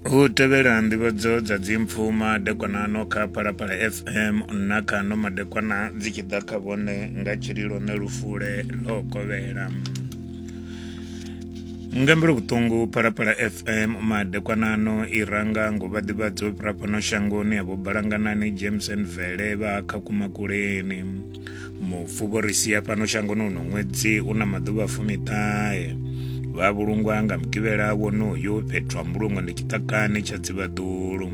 hu tevhela nḓivhadzo dza dzimpfu madekwanano kha phalaphala fm na kha no madekwana dzi tshi ḓa kha vhone nga tshililo ne lufule ḽo kovhela nga mbilo vhuṱungu phalaphala fm madekwanano i ranga ngo vha ḓivhadzo fhira fhano shangoni ya vho balanganani james and vele vha kha kumakuleni mufu vho ri sia fhano shangoni uno ṅwedzi u na maḓuvha fumiṱahe vha vhulungwa nga mugivhela wonoyo fhethu ha mbulungo ndi tshiṱakani tsha dzivhaḓulu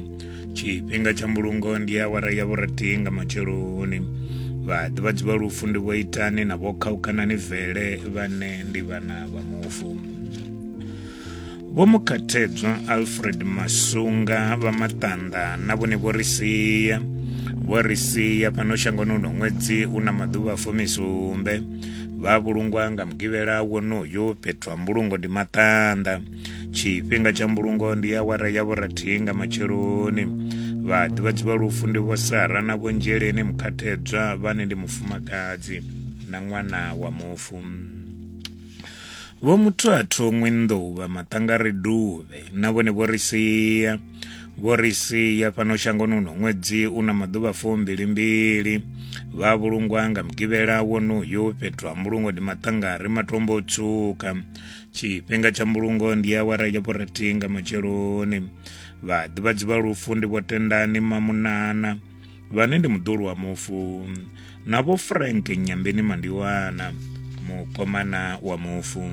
tshifhinga tsha mbulungo ndi awara ya vhuratii nga matsheloni vhaḓivhadzi vha lufu ndi vho itani na vho khaukanani vele vhane ndi vhana vha mufu Vho Mukhathedzwa Alfred Masunga vha Maṱanḓa na vhone vho ri sia vho ri sia fhano shangoni uno ṅwedzi u na maḓuvha fumisumbe vha vhulungwa nga mugivhela wonoyo fhethu ha mbulungo ndi maṱanḓa tshifhinga tsha mbulungo ndi awara ya vhurathi nga matsheloni vha ḓivhadzi vha lufu ndi vho sara na vho nzheleni mukhathedzwa vhane ndi mufumakadzi na ṅwana wa mufu Vho muthu a thongwe nḓuvha maṱanga ri duvhe na vhone vho ri sia vho ri sia fhano shangoni uno ṅwedzi u na maḓuvha fumbilimbili vha vhulungwa nga mugivhela wonoyo fhethu ha mbulungo ndi maṱanga ri matombo o tswuka tshifhinga tsha mbulungo ndi awara ya vhurathi nga matsheloni vhaḓivhadzi vha lufu ndi vho tendani mamunana vhane ndi muḓulu wa mufu na vho frank nyambeni mandiwana mukomana wa mufu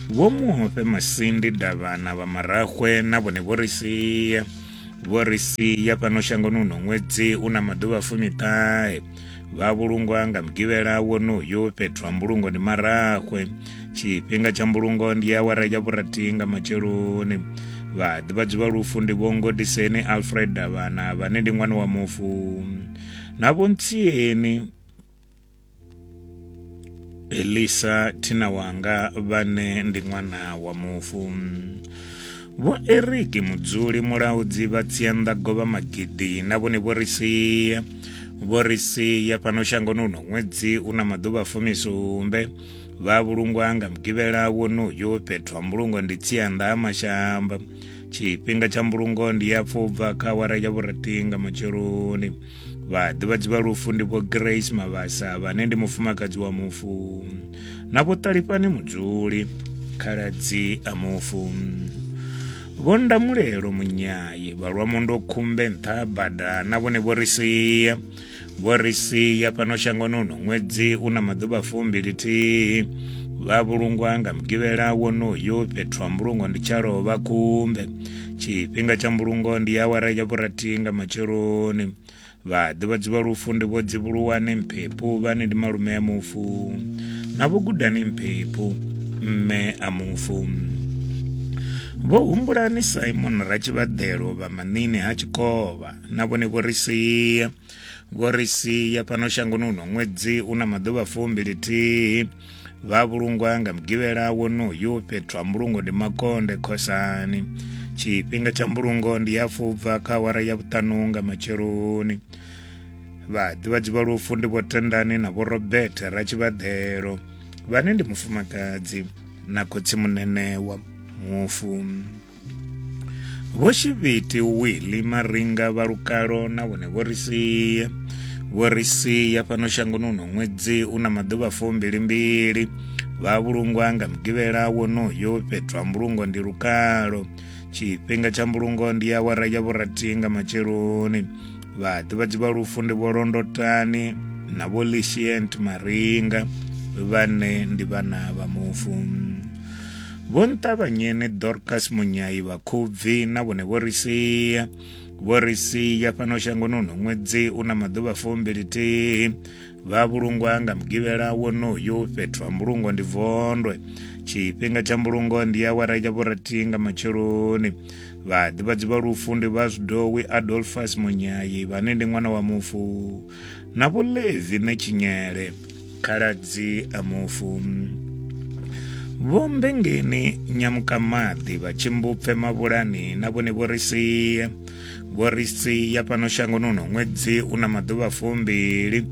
vho muhofe masindi davhana vha marahwe na vhone vho ri sia vho ri sia fhano shangoni uno ṅwedzi u na maḓuvha fumiṱahe vha vhulungwa nga mugivhela wonoyo fhethu ha mbulungo ndi marahwe tshifhinga tsha mbulungo ndi awara ya vhurathi nga matsheloni vhaḓivhadzi vha lufu ndi vhongodiseni alfred davhana vhane ndi ṅwana wa mufu na vhontsieni Elisa thina wanga vhane ndi ṅwana wa mufu Vho Eric Mudzuli mulaudzi vha Tsianda Govha Magidi na vhone vho ri sia vho ri sia fhano shangoni uno ṅwedzi u na maḓuvha fumisumbe vha vhulungwa nga mugivhela wonoyo fhethu ha mbulungo ndi Tsianda ha Mashamba tshifhinga tsha mbulungo ndi ya pfubva kha awara ya vhurathi nga matsheloni vhaḓivhadzi vha lufu ndi vho grace mavhasa vhane ndi mufumakadzi wa mufu na vho ṱalifhani mudzuli khaladzi a mufu vho ndamulelo munyayi vhalwamundo khumbe nṱha bada na vhone vho ri sia vho ri sia fhano shangoni uno ṅwedzi u na maḓuvha fumbilithihi vha vhulungwa nga mugivhela wonoyo fhethu ha mbulungo ndi tshalovha khumbe tshifhinga tsha mbulungo ndi awara ya vhurathi nga matsheloni vhaḓivhadzi vha lufu ndi vho dzivhuluwani mphephu vhane ndi malume a mufu na vho gudani mphephu mme a mufu vho humbulani simon ratshivhaḓelo vha manini ha tshikovha na vhone vho ri sia vho ri sia fhano shangoni uno ṅwedzi u na maḓuvha fumbili thihi vha vhulungwa nga mugivhela wonoyu fhethu ha mbulungo ndi makonde khosani tshifhinga tsha mbulungo ndi ya fubva kha awara ya vhuṱanu nga matsheloni vhaḓivhadzi vha lufu ndi vho tendani na vho robert ratshivhaḓelo vhane ndi mufumakadzi na khotsimunene wa mufu Vho Shivhiti Willy Maringa vha lukalo na vhone vho ri sia vho ri sia fhano shangoni uno ṅwedzi u na maḓuvha fumbili mbili vha vhulungwa nga mugivhela wonoyo fhethu ha mbulungo ndi lukalo tshifhinga tsha mbulungo ndi awara ya vhurathi nga matsheloni vhaḓivhadzi vha lufu ndi vho londotani na vho lishient maringa vhane ndi vhana vha mufu Vho Nṱavhanyeni Dorcas Munyai vha Khubvi na vhone vho ri sia vho ri sia fhano shangoni uno ṅwedzi u na maḓuvha fumbilithihi vha vhulungwa nga mugivhela wonoyu fhethu ha mbulungo ndi vondwe tshifhinga tsha mbulungo ndi awara ya vhurathi nga matsheloni vhaḓivhadzi vha lufu ndi vha zwidowi adolfas munyayi vhane ndi ṅwana wa mufu na vhulevi na tshinyele khaladzi a mufu vhombengeni nyamukamadi vha tshimbupfe mavhulani na vhone vho ri sie vho ri sia fhano shangoni uno ṅwedzi u na maḓuvha fumbili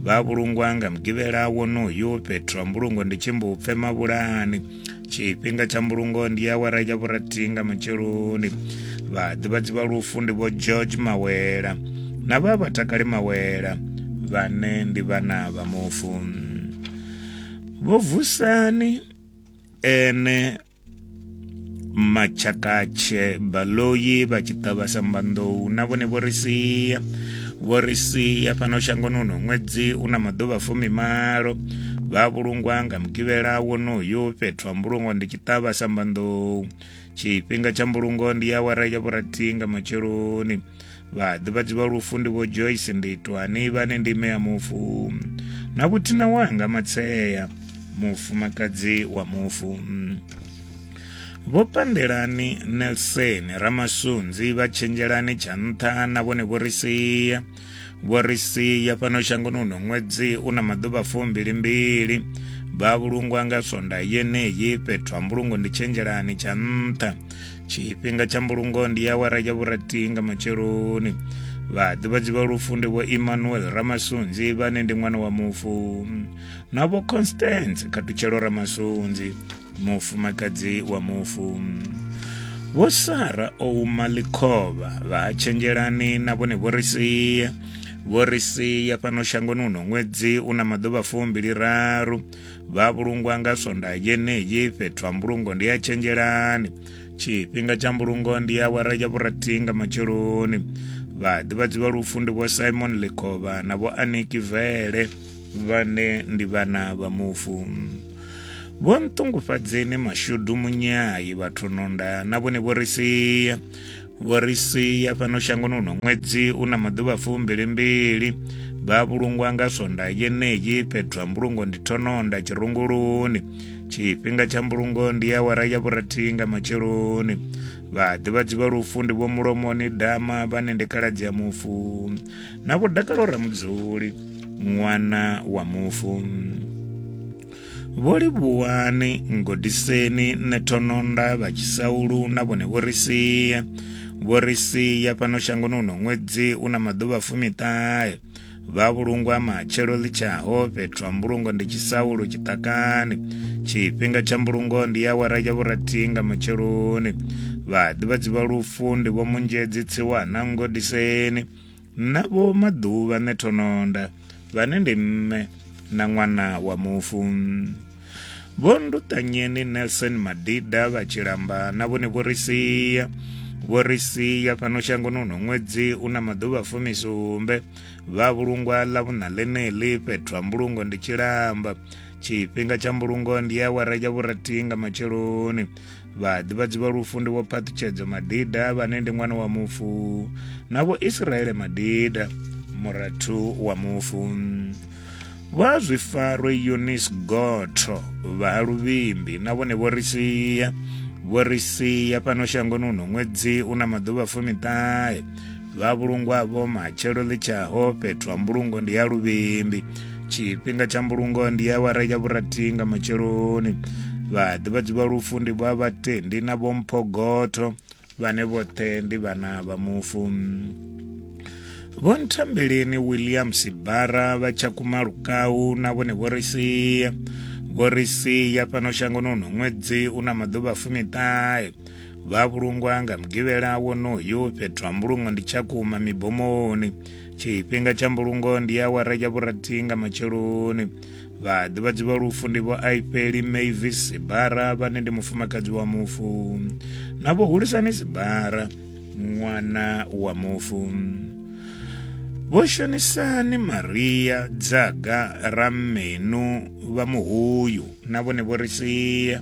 vha vhulungwa nga mugivhela wonoyu fhethu ha mbulungo ndi tshimbupfe mavhulani tshifhinga tsha mbulungo ndi awara ya vhurathihi nga matsheloni vhaḓivhadzi vha lufu ndi vho george mawela na vha vhatakali mawela vhane ndi vhana vha mufu vho vusani ene machakatshe baloyi vha tshi ṱavha sambanḓou na vhone vho ri sia vho ri sia fhano shangoni uno ṅwedzi u na maḓuvha fumimalo vha vhulungwa nga mugivhela wonoyu fhethu ha mbulungo ndi tshiṱavha sambanḓou tshifhinga tsha mbulungo ndi ya awara ya vhurathi nga matsheloni vhaḓivhadzi vha lufu ndi vho joyce nditwani vhane ndi ime ya mufu na vhuthina wanga matsea mufumakadzi wa mufu Vho Pandelani Nelson Ramasunzi vha Tshenzhelani tsha nṱha na vhone vho ri sia vho ri sia fhano shangoni uno ṅwedzi u na maḓuvha fumbili mbili vha vhulungwa nga sonda yeneyi fhethu ha mbulungo ndi tshenzhelani tsha nṱha tshifhinga tsha mbulungo ndi ya wara ya vhurathi nga matsheloni vhaḓivhadzi vha lufu ndi vho emmanuel ramasunzi vhane ndi ṅwana wa mufu na vho constance khatutshelo ramasunzi mufumakadzi wa mufu vho sara o uma ḽikhovha vha ha tshenzhelani na vhone vho ri sia vho ri sia fhano shangoni uno ṅwedzi u na maḓuvha fumbili raru vha vhulungwa nga sonda yeneyi fhethu ha mbulungo ndi ya tshenzhelani tshifhinga tsha mbulungo ndi ya wara ya vhurathi nga matsheloni vhaḓivhadzi vha lufu ndi vho simon lekhovha na vho aniki vele vhane ndi vhana vha mufu vho nṱungufhadzeni mashudu munyai vhathu nonda na vhone vho ri sia vho ri sia fhano shangoni uno ṅwedzi u na maḓuvha fumbilimbili vha vhulungwa nga swonda yeneyi fhethu ha mbulungo ndi thononda tshirunguluni tshifhinga tsha mbulungo ndi ya wara ya vhurathi nga matsheloni vhaḓivhadzi vha lufu ndi vho mulomoni dama vhane ndi khaladzi ya mufu na vho dakalo ramudzuli ṅwana wa mufu vho livhuwani ngodiseni na thononda vha tshisaulu na vhone vho ri sia vho ri sia fhano shangoni uno ṅwedzi u na maḓuvha fumiṱahe vha vhulungwa matshelo ḽitshaho fhethu ha mbulungo ndi tshisaulu tshiṱakani tshifhinga tsha mbulungo ndi awara ya vhurathi nga matsheloni vhaḓivhadzi vha lufu ndi vho munzhedzi tsiwana ngodiseni na vho maḓuvha nṋe thononda vhane ndi mme na ṅwana wa mufu vho nduṱanyeni nelson madida vha tshilamba na vhone vho ri sia vho ri sia fhano shangoni uno ṅwedzi u na maḓuvha fumisumbe vha vhulungwa ḽa vhuṋa ḽeneḽi fhethu ha mbulungo ndi tshilamba tshifhinga tsha mbulungo ndi ya awara ya vhurathi nga matsheloni vhaḓivhadzi vha lufu ndi vho phaṱhutshedzo madida vhane ndi ṅwana wa mufu na vho israele madida murathu wa mufu vha zwifaro yunis gotho vha ha luvhimbi na vhone vho ri sia vho ri sia fhano shangoni uno ṅwedzi u na maḓuvha fumiṱahe vha vhulungwa vho matshelo ḽi tshaho fhethu ha mbulungo ndi ya luvhimbi tshifhinga tsha mbulungo ndi ya wara ya vhurathi nga matsheloni vhaḓivhadzi vha lufu ndi vha vhatendi na vhomphogotho vhane vhoṱhe ndi vhana vha mufu vho nthambeleni william sibara vha tshakhuma lukau na vhone vho ri sia vho ri sia fhano shangoni uno ṅwedzi u na maḓuvha fumiṱahe vha vhulungwa nga mugivhela wonoyu fhethu ha mbulungo ndi tshakhuma mibomoni tshifhinga tsha mbulungo ndi awara ya vhurathi nga matsheloni vha ḓivhadzi vha lufu ndi vho aifheli mavis sibara vhane ndi mufumakadzi wa mufu na vho hulisani sibara ṅwana wa mufu vho shonisani maria dzaga rammenu vha muhuyu na vhone vho ri sia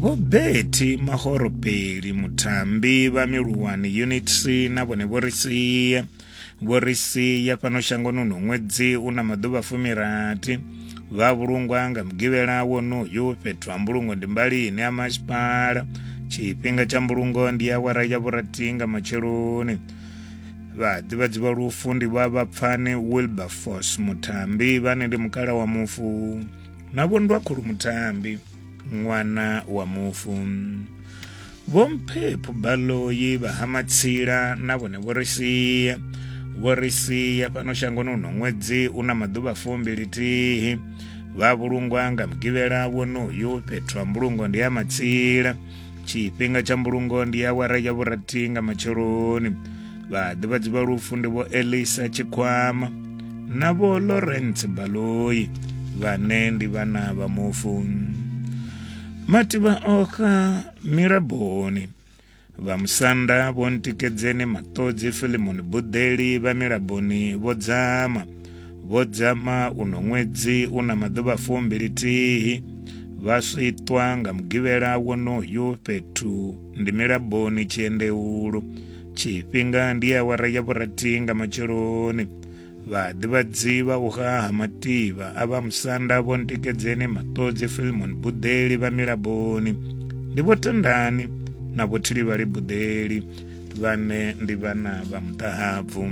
vho beti mahoropeli mutambi vha miluwani unit c na vhone vho ri sia vho ri sia fhano shangoni uno ṅwedzi u na maḓuvha fumirathi vha vhulungwa nga mugivhela wonoyu fhethu ha mbulungo ndi mbali ine ya masipala tshifhinga tsha mbulungo ndi awara ya vhurathi nga matsheloni vhaḓivhadzi vha lufu ndi vha vhapfani wilberforce mutambi vhane ndi mukala wa mufu na vhondwa khulu mutambi ṅwana wa mufu vhomphepho baloyi vha ha matsila na vhone vho ri sia vho ri sia fhano shangoni uno ṅwedzi u na maḓuvha fumbili thihi vha vhulungwa nga mugivhela wonoyu fhethu ha mbulungo ndi ya matsila tshifhinga tsha mbulungo ndi awara ya vhurathi nga matsheloni vhaḓivhadzi vha lufu ndi vho elisa tshikhwama na vho lawrence baloi vhane ndi vhana vha mufu mativha okha miraboni vha musanda vho ntikedzeni maṱodzi filimoni buḓeli vha miraboni vho dzama Vho Dzama uno ṅwedzi u na maḓuvha fumbili thihi vha switwa nga mugivhela wonoyu fhethu ndi milaboni tshiendeulu tshifhinga ndi awara ya vhurathi nga matsheloni vhaḓivhadzi vha u haha mativha a vha musanda vho ntikedzeni maṱodzi filmon buḓeli vha milaboni ndi vho tendani na vho thilivhali buḓeli vhane ndi vhana vha muṱahabvu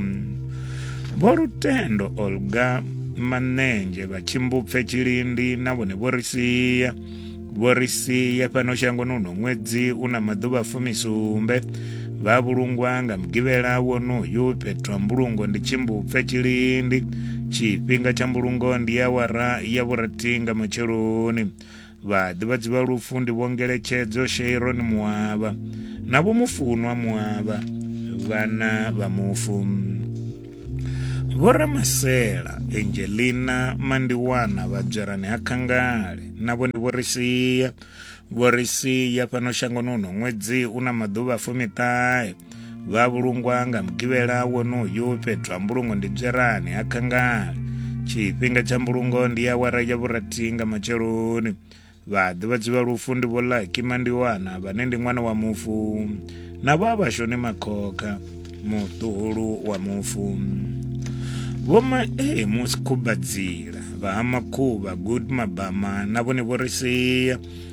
vho lutendo olga manenzhe vha tshimbupfe tshilindi na vhone vho ri sia vho ri sia fhano shangoni uno ṅwedzi u na maḓuvha fumisumbe vha vhulungwa nga mugivhela wonoyu fhethu ha mbulungo ndi tshimbupfe tshilindi tshifhinga tsha mbulungo ndi awara ya vhurathi nga matsheloni Vhaḓivhadzi vha lufu ndi Vho Ngeletshedzo Sheiron Muavha na Vho Mufunwa Muavha, vhana vha mufu. Vho Ramasela Angelina Mandiwana vha Dzwerani ha Khangale navho ndi vho ri sia. Vho ri sia fhano shangoni uno ṅwedzi u na maḓuvha fumiṱahe. vha vhulungwa nga mugivhela wonoyu fhethu ha mbulungo ndi dzerani ha khangale tshifhinga tsha mbulungo ndi awara ya vhurathi nga matsheloni vhaḓivhadzi vha lufu ndi vho laki mandiwana vhane ndi ṅwana wa mufu na vho vhashoni makhokha muṱuhulu wa mufu vhoma e musi khubadzila vha ha makhuvha good mabama na vhone vho ri sia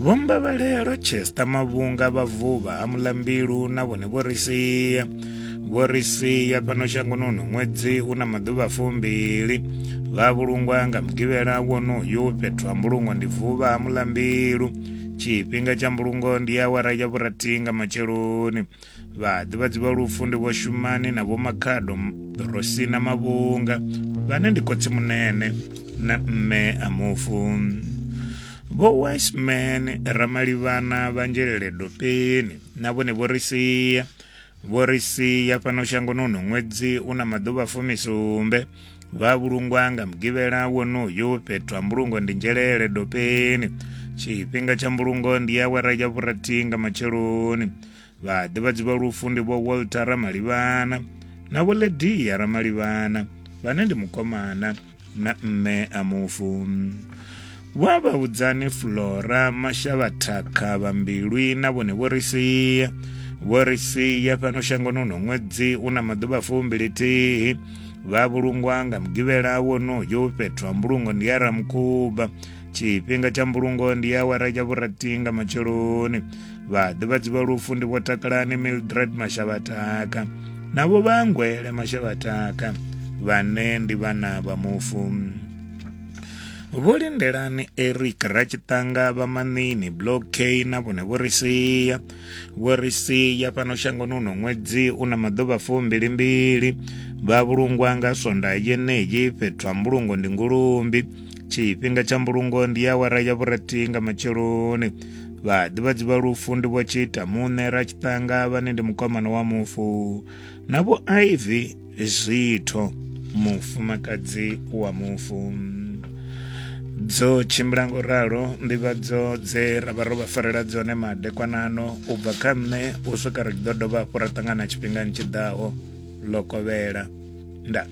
Vho Mbavhelelo Chester Mavhunga vha vuvha ha Mulambilu na vhone vho ri sia vho ri sia fhano shangoni uno ṅwedzi u na maḓuvha fumbili vha vhulungwa nga mugivhela wonoyu fhethu ha mbulungo ndi vuvha ha Mulambilu tshifhinga tsha mbulungo ndi awara ya vhurathi nga matsheloni Vhaḓivhadzi vha lufu ndi Vho Shumani na Vho Makhado Rosina Mavhunga vhane ndi khotsi munene na mme a mufu. Vho Wiseman Ramalivhana vha Nzhelele Dopeni na vhone vho ri sia vho ri sia fhano shangoni uno ṅwedzi u na maḓuvha fumisumbe vha vhulungwa nga mugivhela wonoyu fhethu ha mbulungo ndi Nzhelele Dopeni tshifhinga tsha mbulungo ndi awara ya vhurathi nga matsheloni vhaḓivhadzi vha lufu ndi vho walter ramalivhana na vho ledia ramalivhana vhane ndi mukomana na mme a mufu vho a vhaudzani flora mashavha thakha vha mbilwi na vhone vho ri sia vho ri sia fhano shangoni uno ṅwedzi u na maḓuvha fumbilithihi vha vhulungwa nga mugivhela wonoyo fhethu ha mbulungo ndi ya ramukhuba tshifhinga tsha mbulungo ndi awara ya vhurathi nga matsheloni vhaḓivhadzi vha lufu ndi vho takalani mildred mashavhataka na vho vhangwele mashavhataka vhane ndi vhana vha mufu vho lindelani eric ratshitanga vha manini block k na vhone vho ri sia vho ri sia fhano shangoni uno ṅwedzi u na maḓuvha fumbilimbili vha vhulungwa nga sonda yeneyi fhethu ha mbulungo ndi ngulumbi tshifhinga tsha mbulungo ndi awara ya vhurathi nga matsheloni vhaḓivhadzi vha lufu ndi vho tshiita muṋe ra tshiṱanga vhane ndi mukomana wa mufu na vho iv zwitho mufumakadzi wa mufu dzo tshimbila ngo ralo nḓivhadzo dze ra vha ro vha farela dzone madekwanano u bva kha nṋe u swika ri ḓo dovha hafhu ra ṱangana tshifhingani tshi ḓaho ḽo kovhela nda